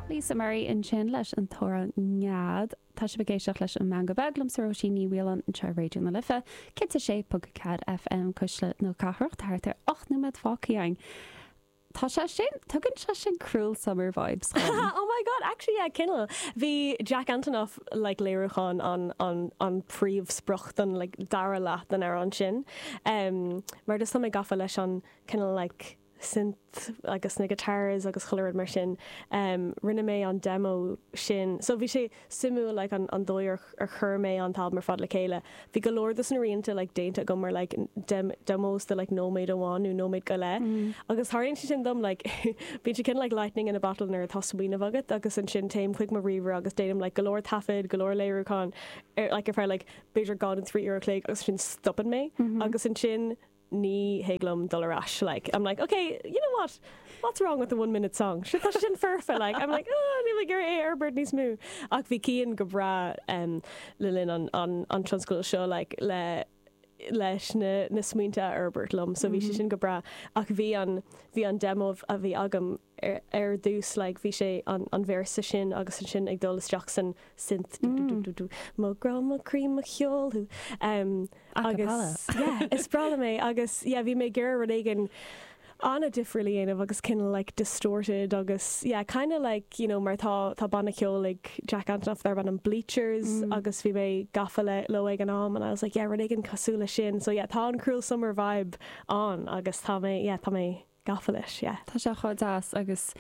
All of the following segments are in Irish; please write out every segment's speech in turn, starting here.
Lisa Murray ansin leis an toradh nead. Tá sibh ag éisteacht leis an Meangadh Beag liomsa Róisín Ní Mhaoláin anseo ar Raidió na Life, 106.4 FM, Cuisle na Cathrach, thart ar 8 nóiméad fágtha againn. Tá sé sin, tugann sé sin cruel summer vibes chugam. Oh my God, actually yeah, cineál. Bhí Jack Antonoff, like léiriúchán an, an, an príomhsprioc don like dara leath den amhrán sin. Umm, mar just tá mé gafa leis an cineál like, synth agus na guitars agus chuile rud mar sin. Rinne mé an demo sin, so bhí sé suimiúil like an an dóigh ar ar chuir mé an t-albam ar fad le chéile. Bhí go leor dos na rianta like déanta agam ar like dem demos de like nóiméad amháin nó nóiméad go leith agus tharlaíonn sé sin dom like bíonn sé kinda like lightning in a bottle nuair atá smaoineamh agat agus ansin téim chuig mo ríomhaire agus déanaim like go leor taifead, go leor léiriúcháin ar like ar feadh like b'fhéidir dhá nó trí uair a chloig agus ansin stopann mé agus ansin Ní thig liom dul ar ais, like, I'm like, ok, you know what, what's wrong with the one minute song, sure, tá sé sin foirfe, like, I'm like, oh, níl mé ag iarraidh é a fhorbairt níos mó. Ach bhí Cian go breá le linn an tionscadail seo, like, le, leis na smaointe a fhorbairt liom, so bhí sé sin go breá. Ach bhí an, bhí an demo a bhí agam, ar ar dtús like bhí sé an an véarsa sin agus ansin ag dul isteach san synth dú dú dú dú dú mo ghrá mo chroí mo cheol thú em agus yeah is breá liom é agus yeah bhí mé ag iarraidh rud éigin an-difriúil a dhéanamh agus cineál like distorted agus yeah kinda like you know mar tá tá banna ceol ag Jack Antonoff darb ainm Bleachers agus bhí mé gafa le leo ag an am and I was like yeah rud éigin cosúil leis sin so yeah tá an cruel summer vibe ann agus tá mé yeah tá mé gafa leis, yeah. Tá sé chomh deas agus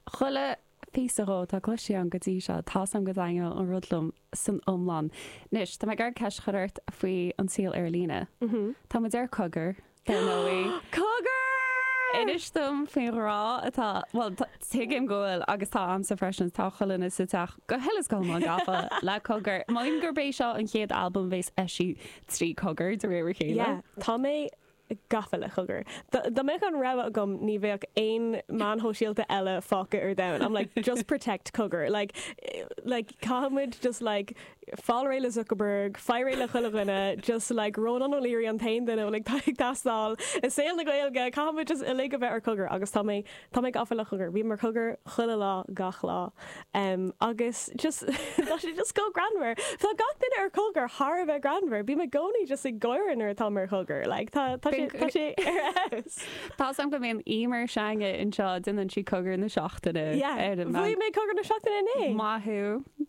chuile phíosa dhó atá cloiste agam go dtí seo, tá fhios a'm go dtaitneoidh an rud liom san iomlán. Anois, tá mé ag iarraidh ceist a chur ort faoi an saol ar líne. Tá muid ar Cogar, dar ndóigh. Cogar! Inis dom faoin ghrá atá, bhuel, tuigim go bhfuil agus tá a'msa freisin, tá chuile dhuine sa teach go huile is go hiomlán gafa le Cogar. M'anam gurb é seo an chéad albam bhéas eisithe trí Cogar de réir a chéile. Yeah, tá mé gafa le cogar. Dá mbeadh an rogha agam ní bheadh aon meáin shóisialta eile fágtha ar domhan. I'm like, just protect cogar. Like, like caithfidh muid just like fáil réidh le Zuckerberg, faigh réidh le chuile dhuine, just like Rónán O'Leary an t-aon duine a bhfuil ag teastáil i saol na Gaeilge, caithfidh muid just uilig a bheith ar cogar agus tá mé Tá mé gafa le cogar. Bím ar chogar chuile lá gach lá agus just tá sé just chomh greannmhar. Tá gach duine ar chogar thar a bheith greannmhar. Bím i gcónaí just ag gáire nuair atáim ar chogar. Like tá tá sé tá sé ar fheabhas. Tá fhios a'm go mbíonn Emer s'againne anseo, déanann sí cogar na seachtaine ar an. Yeah. Bhuaigh mé cogar na seachtaine inné. Maith thú.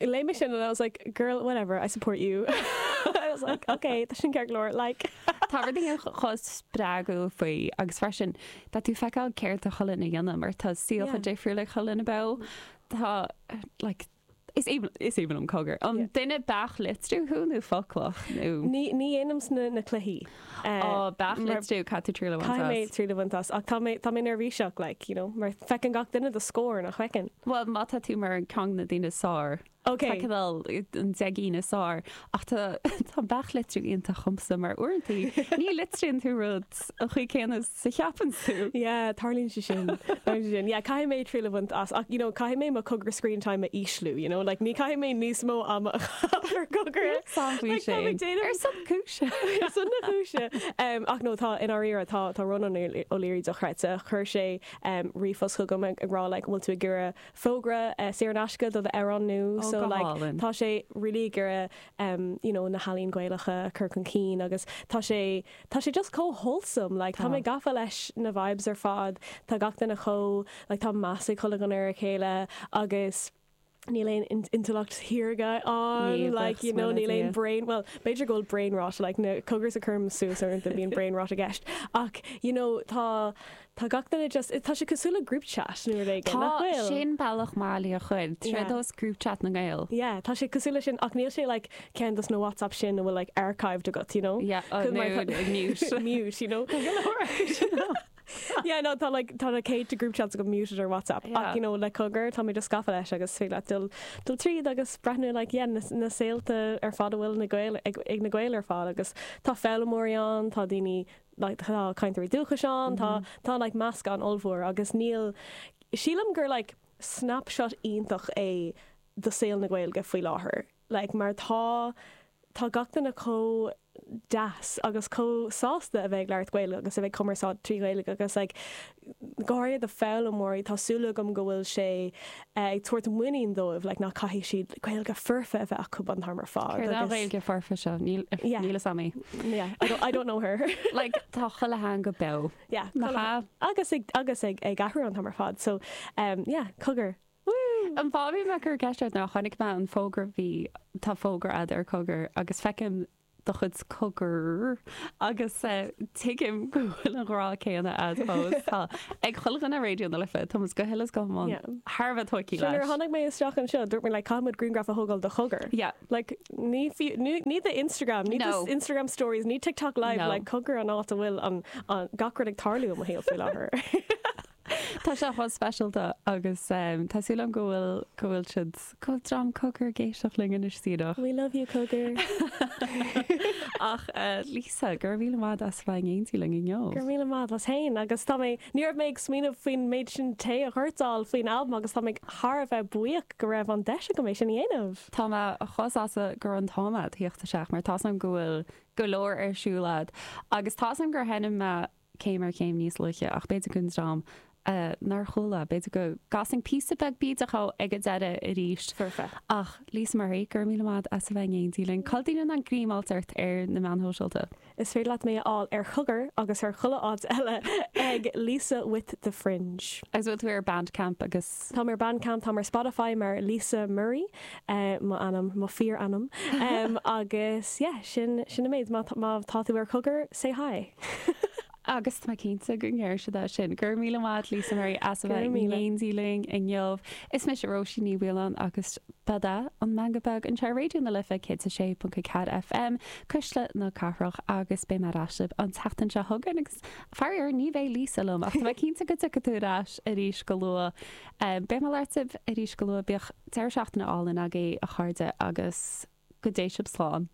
Léigh mé sin and I was like, girl, whatever, I support you. I was like, ok, tá sin ceart go leor, like. Tá rud éicínt chomh spreagúil faoi agus freisin tá tú ag feiceáil céard atá chuile dhuine a dhéanamh mar tá saol chomh difriúil ag chuile dhuine beo. Tá, like, is is aoibhinn liom cogar. An duine beach litriú thú nó foclach nó. Ní dhéanaimse na cluichí. Á beach litriú, caithfidh tú triail a bhaint as. Caithfidh mé triail a bhaint as, ach tá mé, tá mé neirbhíseach, like, you know, mar feiceann gach duine do scór, nach bhfeiceann? Bhuel, má tá tú mar ceann de na daoine is fearr, feiceann, an deichniúr is fearr, ach tá, tá an beach litriú iontach dhomsa, mar uaireanta ní litríonn tú rud an chaoi céanna. is a cheapanns tú? Yeah, tarlaíonn sé sin, tarlaíonn sé sin. Yeah, caithfidh mé triail a bhaint as ach, you know, caithfidh mé mo cogar screen time a ísliú, you know, like ní chaithfidh mé níos mó ama a chaitheamh ar cogar. Níl 'fhios a'm faoi sin. Ar son na cúise. Ar son na cúise. Ach no, tá, i ndáiríre, tá, tá Rónán O'Leary dochreidte. Chuir sé ríomhphost chugam ag, ag rá, like, an bhfuil tú ag iarraidh fógra saor in aisce do d'amhrán nua? Oh, go hálainn. So, like, tá sé really ag iarraidh, you know, na healaíona Gaelacha a chur chun cinn agus tá sé, Tá sé just chomh wholesome like tá mé gafa leis na vibes ar fad tá gach duine chomh like tá meas ag chuile dhuine ar a chéile agus níl aon intleacht shaorga ann like you know níl aon brain well b'fhéidir go bhfuil brain rot like na cogair a chuirim suas uaireanta bíonn brain rot i gceist ach you know tá Tá gach duine just, tá sé cosúil le group chat nó rud éigin, Tá, nach bhfuil? sin bealach maith le é a chur, Yeah. tréad os group chat na nGael. Yeah, tá sé cosúil le sin, ach níl sé like ceann de na WhatsApp sin a bhfuil like archived agat, you know? Yeah, oh, Cosúil, mar no, atá- mute. mute, you know? Tá go leor acu sin, no. Yeah, no, tá like, tá na céadta group chats agat muted ar WhatsApp, ach Yeah. you know, le cogar, tá mé just gafa leis agus is féidir leat dul, dul tríd agus breathnú like, yeah, na, na saolta ar fad a bhfuil na Gael, ag, ag na Gael ar fad agus tá foghlaimeoirí ann, tá daoine like tá cainteoirí dúchais ann tá tá like meascán ollmhór agus níl sílim gur like snapshot iontach é do shaol na Gaeilge faoi láthair like mar tá tá gach duine chomh deas agus chomh sásta a bheith ag labhairt Gaeilge agus a bheith ag cumarsáid trí Ghaeilge agus like go háirithe do foghlaimeoirí, tá súil agam go bhfuil sé ag tabhairt muinín dóibh like nach caithfidh siad Gaeilge fhoirfe a bheith acu an t-am ar fad Céard é an agus Ghaeilge fhoirfe seo? Níl yeah níl aithne a'm uirthi. yeah I don't I don't know her Like tá chuile theanga beo. yeah Nach chuile ea? agus ag agus ag ag athrú an t-am ar fad so em yeah cogar woo. An fáth a bhí mé ag cur ceist ort ná chonaic mé an fógra bhí tá fógra a'd ar cogar agus feicim do chuid cogar agus tuigim go bhfuil an grá céanna agat fós. Tá, ag chuile dhuine ar Raidió na Life, tá muid go huile is go hiomlán thar a bheith tógtha leis. Nuair a tháinig mé isteach anseo, dúirt mé, like, caithfidh muid grianghraf a thógáil do chogar. Yeah. Like, ní, ní, ní do Instagram, ní no. do Instagram stories, ní TikTok live, no. like, cogar an áit a bhfuil an, an gach rud ag tarlú i mo shaol faoi láthair. Tá sé chomh speisialta agus tá súil agam go bhfuil, go bhfuil siad, go bhfuil dream Cogar ag éisteacht linn anois sínte amach. We love you Cogar. Ach Lisa, go raibh míle maith a'd as a bheith in éindí linn inniu. Go raibh míle maith a'd féin agus tá mé, ní raibh mé ag smaoineamh faoin méid sin tae a dhoirteáil faoin albam agus tá mé thar a bheith buíoch go raibh an deis agam é sin a dhéanamh. Tá mé chomh sásta go raibh an t-am a'd a thíocht isteach mar tá's a'm go bhfuil go leor ar siúl a'd agus tá's a'm gur sheinm mé céim ar chéim níos luaithe, ach b'fhéidir don dream nár chuala, b'fhéidir go gcasfainn píosa beag bídeach ag an deireadh arís. Foirfe. Ach, Lisa Murray, go raibh míle maith a'd as a bheith in éindí linn. Cá ndéanann muid greim a fháil ort ar na meáin shóisialta? Is féidir leat mé a fháil ar Chogar agus ar chuile áit eile ag Lisa with the Fringe. Agus bhfuil tú ar Bandcamp agus Táim ar Bandcamp, táim ar Spotify mar Lisa Murray m'ainm, mo fíor-ainm. Agus yeah, sin sin an méid. Má má tá tú ar Cogar, say hi! Agus tá mé cinnte go ndéarfaidh siad é sin. Go raibh míle maith agat Lisa Murray as a Go raibh bheith míle maith. in éindí linn inniu. Is mise Róisín Ní Mhaoileáin agus ba é seo an Meangadh Beag anseo ar Raidió na Life 106.4 FM, Cuisle na Cathrach, agus beidh mé ar ais libh an tseachtain seo chugainn. Faraor, ní bheidh Lisa liom, ach tá mé cinnte go dtiocfaidh tú ar ais arís go luath. Beidh mé ag labhairt libh arís go luath. Bíodh deireadh seachtaine álainn agaibh, a chairde, agus go dté sibh slán.